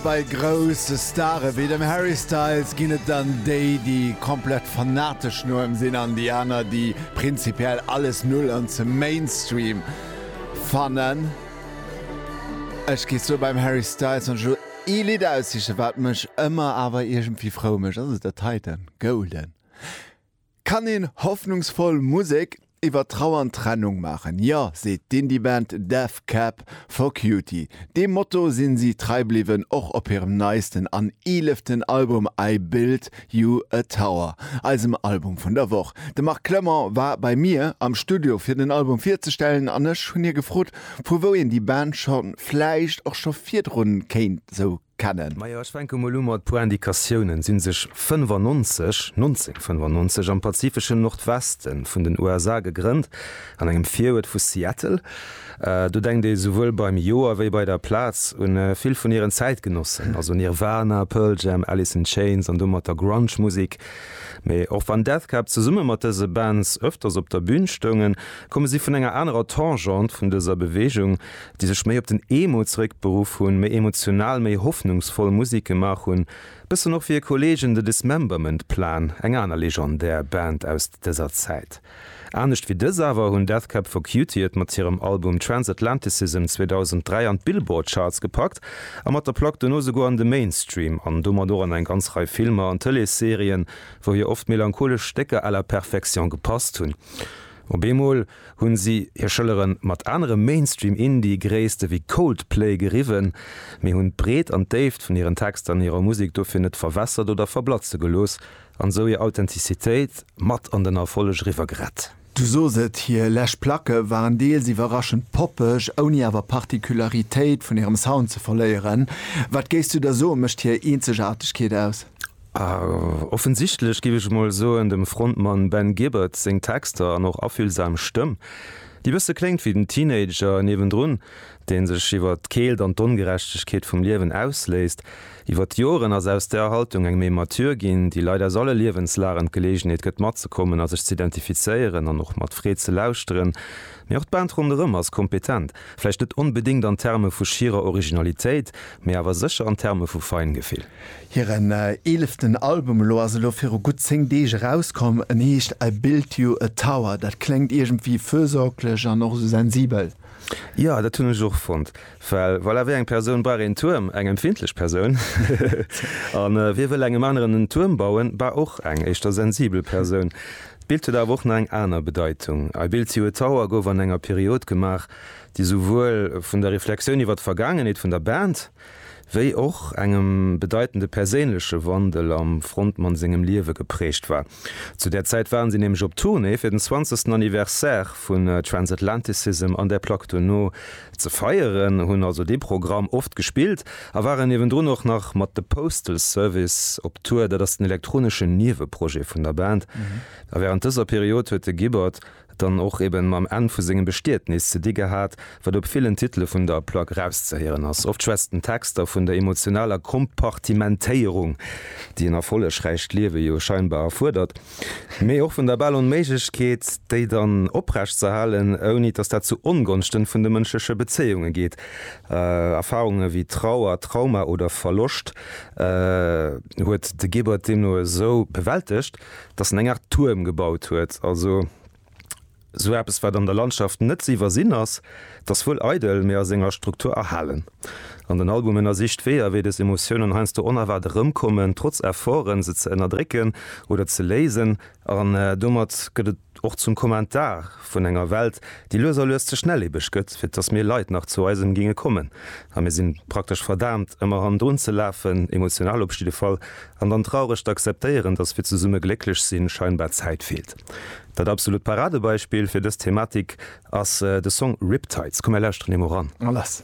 Bei grousse Stare wéi dem Harry Styles ginn et dann déi, déi komplett fanatesch no em sinn an déi aner, déi prinzipiell alles null an ze Mainstream fannen. Ech gi soe beim Harry Styles, wann ech elo ee Lidd aussiche wat mech ëmmer awer iergendwéi frou mécht, ass et dat heiten, Golden. Kann een hoffnungsvoll Musek iwwer Trauer an Trennung maachen? Jo, seet d'Indie-Band Death Cab for Cutie. Deem Motto sinn si trei bliwwen, och op hirem neisten an eeleften Album I Built You a Tower, eisem Album vun der Woch. De Marc Clement war bei mir am Studio fir den Album virzestellen an ech hunn hie gefrot, vu wou een déi Band scho vläicht och scho virdrun kéint sou kennen. Majo, ech fänke mol u mat puer Indikatiounen, sinn sech 95, 1995, am pazifeschen Nordwesten vun den USA gegrënnt, an engem Viruert vu Seattle. Do denkt ee souwuel beim Joer wéi bei der Plaz un vill vun hiren Zäitgenossen, also Nirvana, Pearl Jam, Alice in Chains an domat der Grunge Musik. Mee och wann Death Cab zesumme mat dëse Bands ëfters op der Bühn stoungen, komme si vun enger anerer Tangente vun dëser Bewegung. déi sech méi op den Emo zeréckberuff hunn, méi emotional, méi hoffnungsvoll Musek gemaach hunn, bëssen och wéi e Kollegen The Dismemberment Plan, eng aner legendär Band aus dëser Zäit. Anescht wéi dës awer hunn Death Cab for Cutie et mat hirem Album Transatlanticism 2003 an d'Billboard Charts gepackt a mat der Plack dono souguer an de Mainstream an domat och an eng ganz Rei Filmer an Tëleesserien, wou hir oft melancholesch Stécker à la perfection gepasst hunn. Op eemol. hunn si hir Schëllere mat anere Mainstream-Indie-Gréisste wéi Coldplay geriwwen, mee hunn d'Breet an d'Déift vun hiren Texter an hirer Musek dofir net verwässert oder verblatze gelooss an esou hir Authentizitéit mat an den Erfolleg eriwwer gerett. Du sos et, hir lescht Placke waren deels iwwerraschend poppeg, ouni awer Particularitéit vun hirem Sound ze verléieren. Wat géifs du da soen, mécht hir Eenzegaartegkeet aus? A offensichtlech, giff ech mol soen, dem Frontmann Ben Gibbard seng Texter an och affüllsam Stëmm, déi bësse kléngt wéi den Teenager niewendrun, dee sech iwwert d'Keelt an d'Ongerechtegkeet vum Liewen ausléisst. Iwwert d'Joren ass aus där Haltung eng méi mature ginn, déi Leit aus alle Liewenslagen d'Geleegenheet gëtt matzekommen a sech z'identifizéieren an och mat Freed ze lauschteren. Mee och d'Band ronderëm ass kompetent, vläicht net onbedéngt an Terme vu schierer Originalitéit, mee awer sécher an Terme vu Feingefill. Hiren eeleften Album elo ass elo viru gutt 10 Deeg erauskomm. En heescht I Built You A Tower. Dat kléngt iergendwéi fürsorglech an och esou sensibel. Jo, dat hunn ech och fonnt, well voilà, wéi eng Persoun brauch een Tuerm? Eng empfindlech Persoun. A wie wëll engem aneren en Tuerm bauen? Bah, och eng éischter sensibel Persoun. D'Bild huet awer och nach eng aner Bedeitung. I Built You A Tower gouf an enger Period gemaach, déi souwuel vun der Reflexioun iwwer d'Vergaangenheet vun der Band, wéi och engem bedeitende perséinleche Wandel am Frontmann sengem Liewe geprägt war. Zu där Zäit waren si nämlech op Tournée fir den 20. Anniversaire vun Transatlanticism an där Plack duerno ze feieren, hunn also dee Programm oft gespillt a waren niewendrun och nach mat The Postal Service op Tour, dat ass den elektroneschen Nieweprojet vun der Band. A wärend dëser Period huet de Gibbard. dann och eben mam Enn vu sengem Bestietnis ze di gehat, wat op villen Titele vun der Plack rauszehéieren ass. Oft schwätzt den Texter vun der emotionaler Kompartimentéierung, déi en erfollegräicht Liewe jo scheinbar erfuerdert, mee och vun der bal Onméiglechkeet, déi dann oprecht ze erhalen, ouni dass dat zu Ongonschten vun de mënschleche Bezéiunge geet. Erfarunge wéi Trauer, Trauma oder Verloscht huet de Gebert deemno esou bewältegt, dass en eng Art Tuerm gebaut huet, also sou eppes wat an der Landschaft net ze iwwersinn ass, dass wuel eidel, mee a senger Struktur erhalen. An den Album ënnersicht Weeër, wéi des Emotiounen heiansdo onerwaart erëmkommen, trotz Efforten, se ze ënnerdrécken oder ze léisen. An domat gëtt et och zum Kommentar vun enger Welt, déi lues a lues ze schnellebeg gëtt, fir dass mir Leit nach zu eisem géinge kommen. A mir si praktesch verdaamt, ëmmer hannendrun ze lafen, emotional op jidde Fall. An dann traureg d'akzeptéieren, dass fir zesumme glécklech sinn, scheinbar Zäit feelt. Dat absolut Paradebeispill fir dës Thematik ass de Song Riptides. Komm mir lauschteren him mol ran. Mä lass.